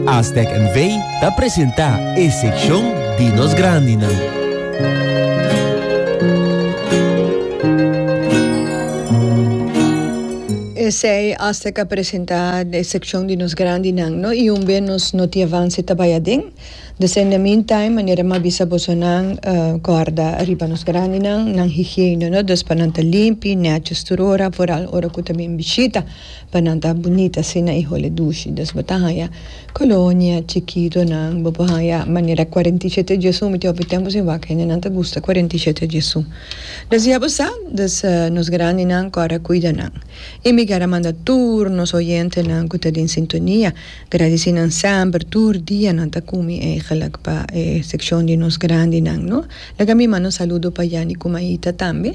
Aztec N V ta presenta e seccion di nos grandinan. Esey Aztec a presenta e seccion di nos grandinan no y un be nos noti avance ta bay aden. Desde in the mean time manera mi a bisa boso nan guarda ariba nos grandinan, nan higiene no, dus pa nan ta limpi, netjes tur ora, foral ora cu ta bin bishita. Pa nan ta bunit asina y hole dushi. Dus bo ta haya colonia chikitonan, bo por haya manera cuarenta y siete Jesu, mi tin hopi tempo sin wak hende nan ta gusta cuarenta y siete Jesu. Dus ya bo sa, dus nos grandinan core a cuida nan. Y mi ker a manda tur nos oyentenan cu ta den sintonia, gradici nan semper, tur dia nan ta cumi eigenlijk pa e seccion di nos grandinan, no? Laga mi manda un saludo pa Yanni cu Maita tambe.